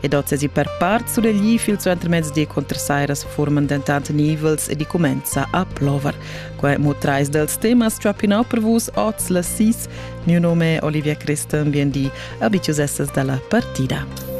ed ozasi per part sulegli fil suentermezz di contrasairas forman dentant nivels e di comenza a plover. Quai mo trais dels temas trappinau per vus oz la sis. Mio nome è Olivia Christen, bien di, abitius essas dalla partida.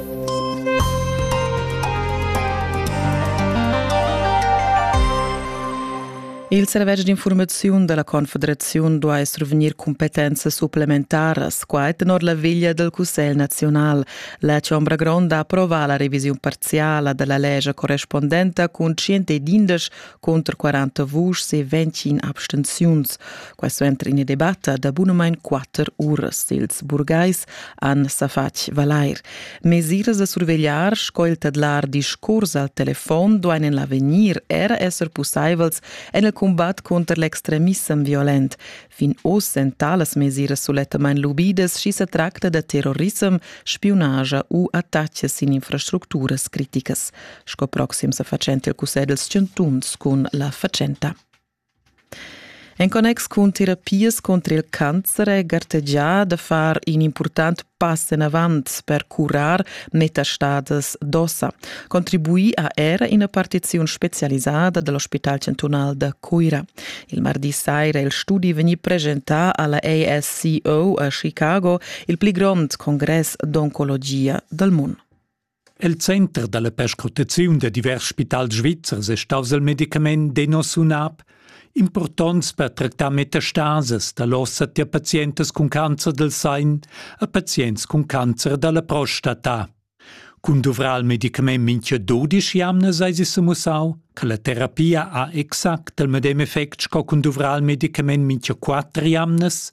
Il servetsch d'informaziun della Confederaziun duai survegnir competenze supplementaras, quai tenor la veglia del Cussegl nazional, La Chombra Gronda ha approvà la revisiun parziala della legge correspondenta cun 111 contro 40 vuschs e 21 abstenziuns. Questo entra in debatta da bunamain 4 uras. Ils burgais han sa fatg valair. Mesiras da survegliar sco il tedlar discurs al telefon duain en l'avegnir er esser pussaivels en il combat contro l'extremissem violent, Fin oz èn talas mesiras sulettamain lubidas, sch'i sa tracta da terrorissem, spiunage u attacks sin infrastructuras criticas, sco proxim sa fatschenta il cussegl dels chantuns cun la fatschenta. En connex cun terapias contro il cancer è gartegià da far in important pass enavant per curar metastadas d'ossa, contribui a era ina partiziun specialisada dell'ospital chantunal da Cuira. Il mardi saira il studi vegni presentà alla ASCO a Chicago, il pli grond congress d'oncologia dal mondo. El center dalla perscrutaziun da divers spitals svizzers è staus il medicament Denosumab, impurtonts per tractar metastases dall'ossa tier pazientas cun cancer del sein a pazients cun cancer dalla prostata. Cun duvrar il medicament mincha dudisch jamnas eis es semussau che la terapia ha exact il medem effect sco cun duvrar il medicament mincha quatter jamnas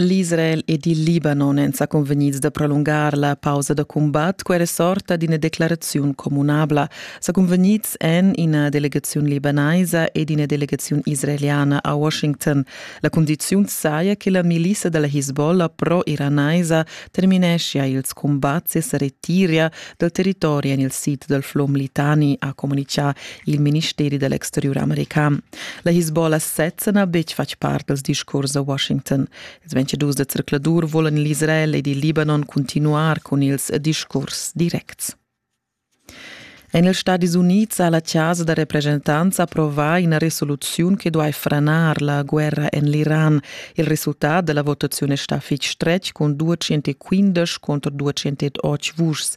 L'Israel ed il Libanon èn sa cunvegnids da prolungar la pausa da cumbat. Quella sorta d'ina declaraziun communabla sa cunvegnids en ina delegaziun libanaisa ed ina delegaziun israeliana a Washington. La cundiziun saja che la milissa da la Hezbollah pro-iranaisa termineschia ils cumbats e sa retiria dal territori en il sid dal flum Litani, ha communitgà il ministeri da l'exteriur american. La Hezbollah sezza n'ha betg fatg part dals discurs a Washington. Ils 22 da zercladur volan l'Israel ed il Libanon continuar cun ils discurs directs. En ils Stadis Unids ha la chasa da represchentants approvà ina resoluziun che duai franar la guerra en l'Iran. Il resultat della votazione sta fitg stretg con 215 contro 208 vuschs.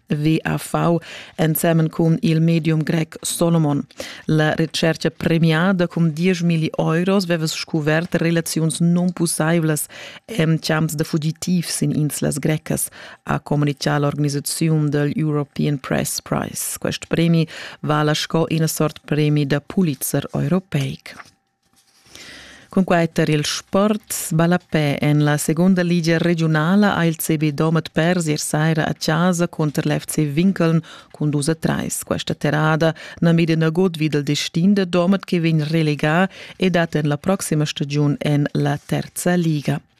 WAV ensemen cun il medium grec Solomon. La recerca premiada cun 10.000 euros aveva scuvert relaziuns non possiblas en champs de fugitivs in inslas grecas, ha comunicà l'organisazione del European Press Prize. Quest premi vala sco una sorta premi da Pulitzer europeic. Cunquai tar il sport ballapè en la segunda ligia regiunala ha il CB Domat pers ier saira a chasa cunter l'FC Winkeln cun dus a trais. Questa terrada na mida nagut vid il destin da Domat che vegn relegà e dat en la proxima stagiun en la terza liga.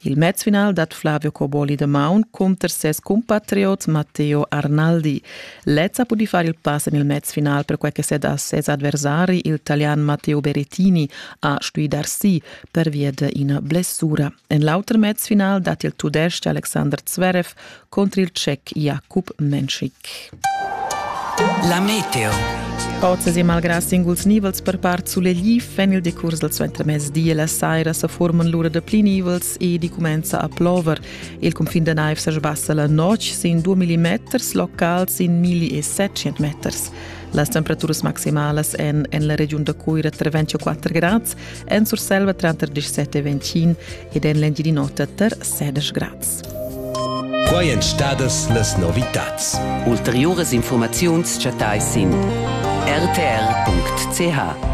Il mezfinal dat Flavio Coboli de Maun cunter ses compatriot Matteo Arnaldi. Lezza ha pudì far il pass en il mezfinal per quai che set a ses adversari, il talian Matteo Berrettini, ha stuì dar si per via d'ina blessura. En l'auter mezfinal dat il tudestg Alexander Zverev contr il tschec Jakub Menschik. La meteo. Oz e malgrà singuls nivels per part sulegliv en il decurs dal suentermezdi e la saira sa forman l'ura da pli nivels e di cumenza a plover. Il cunfin da naiv sa sbassa la notg sin 2 mm, locals sin 1700 meters. Las temperaturas maximalas en en la regiun da Cuira tra 24 e 4 grads, en Surselva tranter 17 e 25 ed en l'Engiadin'Ota tra 16 grads. Quai èn stadas las novitads. Ulteriuras infurmaziuns chattais sin rtr.ch.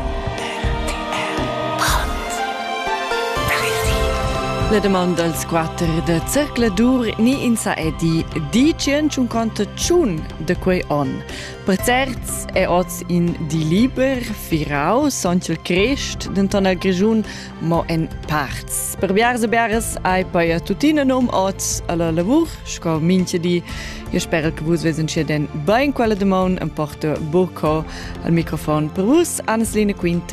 La domanda als quatter da Zercla Dur ni in sa è di, di tschient conta tschun da quei on. Per certs è oz in di liber, firau, sontg Crest, denton al Grischun mo en parts. Per biars e biaras hai paia tuttina nom oz alla lavur, sco minche di. Io spero che vus vesen sia den bain quella demon en porto buco al microfon per vus, Anneslina Quinte